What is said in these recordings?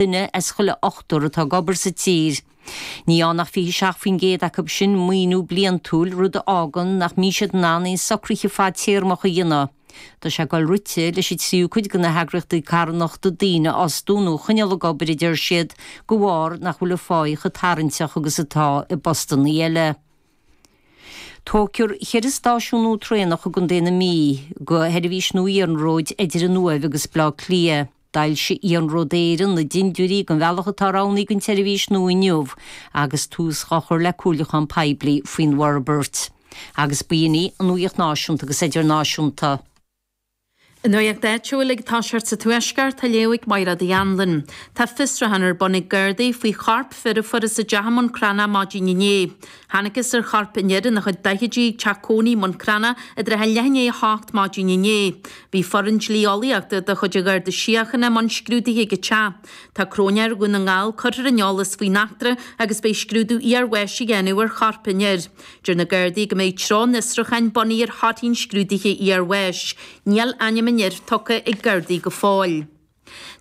duine as chuile ochtar atá ag obair sa tír. Ní fhaigheann ach 27% acu sin maoiniú bliantúil, rud a fhágann nach mbíonn siad in ann aon socruithe fadtéarmach a dhéanamh. Tá sé ag dul rite leis an tríú cuid de na heagraíochtaí carthanachta daoine a fhostú nó a choinneáil ag obair, a deir siad, de bharr nach bhfuil an pháighe chomh tarraingteach agus atá i bpostanna eile. Tógfar cheithre stáisiún nua traenach i gContae na Mí do sheirbhís nua iarnróid idir an Uaimh agus Baile Átha Cliath. D'fhoilsigh Iarnród Éireann na dindiúirí den bhealach atá roghnaithe don tseirbhís nua inniu agus tús dhá chur le comhairliúchán poiblí faoin bhforbairt. Agus b'in í an Nuaíocht Náisiúnta agus Idirnáisiúnta. An Nuaíocht Áitiúil ag toiseacht sa Tuaisceart á léamh ag Máire Uí Annlain. Tá fiosruchán ar bun ag Gardaí faoi chorp fir a fuarthas i dteach i mBun Cranncha maidin inné. Thángthas ar chorp an fhir ina chuid daichidí ag teach cónaithe i mBun Cranncha i dtrátha leath i ndiaidh a hocht maidin inné. Bhí foireann dlí-eolaíochta de chuid an Gharda Síochána i mbun scrúdaithe ag an teach. Tá cróinéir Dhún na nGall curtha ar an eolas faoin eachtra agus beidh scrúdú iar-bháis á dhéanamh ar chorp an fhir. Deir na Gardaí go mbeidh treo an fhiosrúcháin bunaithe ar thorthaí an scrúdaithe iar-bháis. Níl ainm an fhir tugtha ag Gardaí go fóill.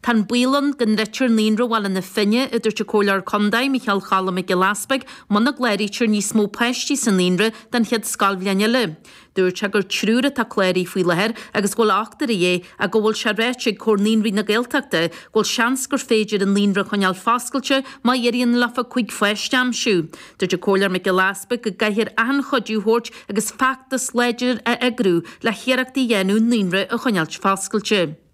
Tá an baol ann go ndruidfear Naíonra Bhaile na Finne, a dúirt an Comhairleoir Contae, Micheál Cholm Mac Giolla Easpaig, muna gcláraítear níos mó páistí sa Naíonra don chéad scoilbhliain eile. Dúirt sé gur triúr atá cláraithe faoi láthair agus go bhfuil ochtar de dhíth ach go bhfuil sé ráite ag Comhar Naíonraí na Gaeltachta go bhfuil seans gur féidir an Naíonra a choinneáil foscailte má éiríonn leofa cúig pháiste a aimsiú. Dúirt an Comhairleoir Mac Giolla Easpaig go gcaithfear achan chuidiú a thabhairt agus feachtas láidir a eagrú le hiarrachtaí a dhéanamh an Naíonra a choinneáilt foscailte.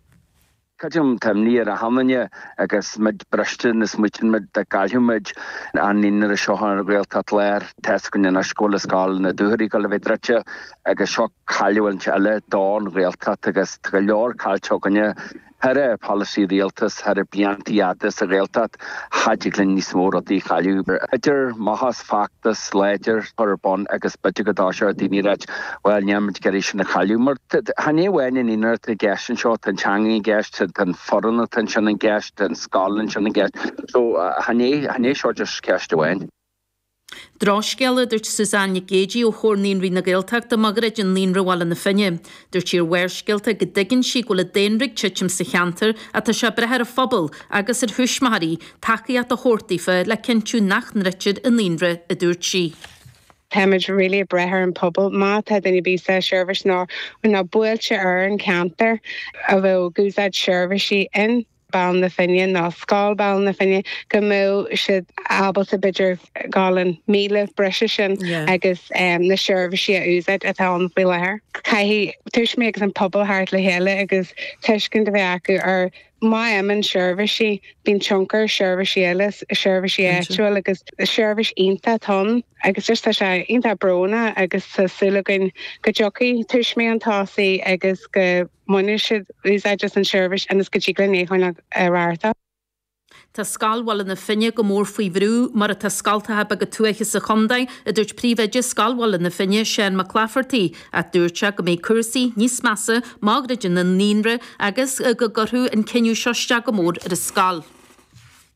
Creidim tá imní ar achan nduine agus muid briste nuair a smaoitíonn muid dá gcaillfeadh muid an naíonra seo ar Ghaeltacht Láir. Tá's againn anois go bhfuil scoil na Dúchoraidh ag dul a bheith druidte agus seo cailliúint eile don Ghaeltacht agus tá go leor caillte againne, thaire polasaí Rialtais, thaire bliantaí fada sa Ghaeltacht. Cha dtig linn níos mó rudaí a chailleadh. Idir maitheas, feachtas láidir a chur ar bun agus b'fhéidir go dtoiseodh daoine a ráit bhuel, níl muid ag iarraidh sin a chailleadh. Mar chan é amháin an naíonra atá i gceist anseo, tá an teanga i gceist, tá an foireann atá ansin i gceist, tá an scoil ansin i gceist. So, chan é, chan é seo just ceist amháin. Drochscéal, a dúirt Suzanne Nic Géidigh ó Chomhar Naíonraí na Gaeltachta, má dhruideann Naíonra Bhaile na Finne. Dúirt sí ar Bharrscéalta go dtuigeann sí go bhfuil an daonra ag titim sa cheantar ach tá sé ag brath ar an phobal, agus ar thuismitheoirí, tacaíocht a thabhairt daofa le cinntiú nach ndruidtear an Naíonra, a dúirt sí. Táimid really ag brath ar an phobal. Má tá duine ar bith sa seirbhís nó na bailte ar an cheantar a bhfuil ag úsáid seirbhísí in. Baile na Finne nó Scoil Bhaile na Finne, go mbeadh siad ábalta b'fhéidir gabháil an míle breise sin agus na seirbhísí a úsáid atá ann faoi láthair. Caithfidh tuismitheoirí agus an pobal teacht le chéile agus tuiscint a bheith acu ar má imíonn seirbhísí, bíonn tionchar ar seirbhísí eile, seirbhísí áitiúil agus seirbhís iontach atá ann agus just tá sé iontach brónach agus tá súil againn go dtiocfaidh tuismitheoirí chun tosaigh agus go mbainfidh siad úsáid as an seirbhís ionas go dtig linn leanúint ar aghaidh. Tá scoil Bhaile na Finne go mór faoi bhrú, mar atá scoltacha beaga tuaithe sa chontae, a dúirt príomhoide Scoil Bhaile na Finne, Seán Mac Laifeartaigh, ach dúirt sé go mbeidh cúrsaí níos measa má dhruideann an naíonra agus go gcuirfeadh an cinneadh seo isteach go mór ar an scoil.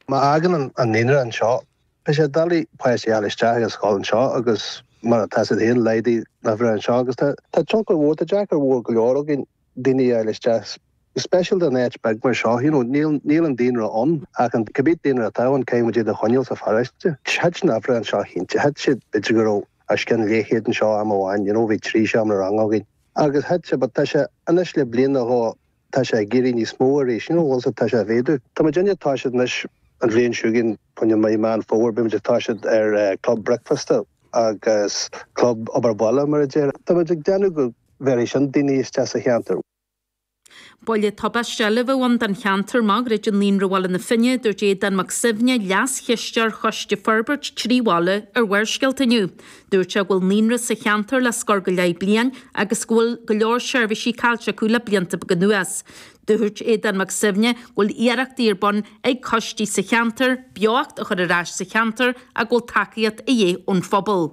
Má fhágann an naíonra anseo Beidh sé doiligh páistí a fháil isteach sa scoil anseo agus mar atá siad féin, laghdaigh na huimhreacha anseo agus tá. Tá tionchar mhór, tá deacracht mhór go leor againn daoine a fháil isteach, go speisialta in áit bheag mar seo, you know, níl, níl an daonra ann ach an, cibé daonra atá ann, caithfidh muid iad a choinneáil sa pharóiste. Thit na huimhreacha anseo cinnte, thit siad, b'fhéidir go raibh os cionn leithchéad anseo am amháin, you know, bhí trí seomra ranga againn agus thit sé but tá sé anois le bliain nó dhó, Tá sé ag éirí níos mó arís ansin, also tá sé ag méadú. Tá muid inne, tá siad anois, an bhliain chugainn, i ndiaidh mí Meán Fómhair, beidh muid, toiseacht ar club bricfeasta agus club obair bhaile mar a déarfá, tá muid ag déanamh go bhéarfaidh sin daoine isteach sa cheantar. Buille tubaisteach eile a bheadh ann don cheantar má dhruideann Naíonra Bhaile na Finne, dúirt Aodán Mac Suibhne, Leas-Chisteoir Choiste Forbairt Trí Bhaile ar Bharrscéalta inniu. Dúirt sé go bhfuil naíonra sa cheantar le scór go leith bliain agus go bhfuil go leor seirbhísí caillte acu le blianta beaga anuas. Dúirt Aodán Mac Suibhne go bhfuil iarrachtaí ar bun ag coistí sa cheantar beocht a chur ar ais sa cheantar ach go bhfuil tacaíocht de dhíth ón phobal.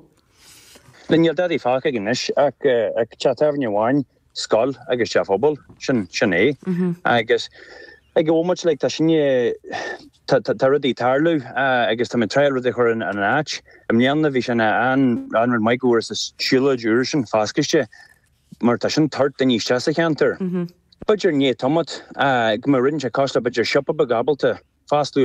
Níl dadaí fágtha anois ach teach tábhairne amháin. scoil agus teach pobail, sin, sin é. Agus ag an bhomaite, like, tá sinne, tá, tá, tá rudaí ag tarlú agus tá muid ag tráil rudaí a chur in, in áit. I mbliana bhí sin an, an rud maith go bhfuair muid an siúlóid úr sin foscailte mar tá sin ag tabhairt daoine isteach sa cheantar. B'fhéidir i ndiaidh tamaill, go mbeadh rud inteacht cosúil, b'fhéidir siopa beag ábalta foscladh ar.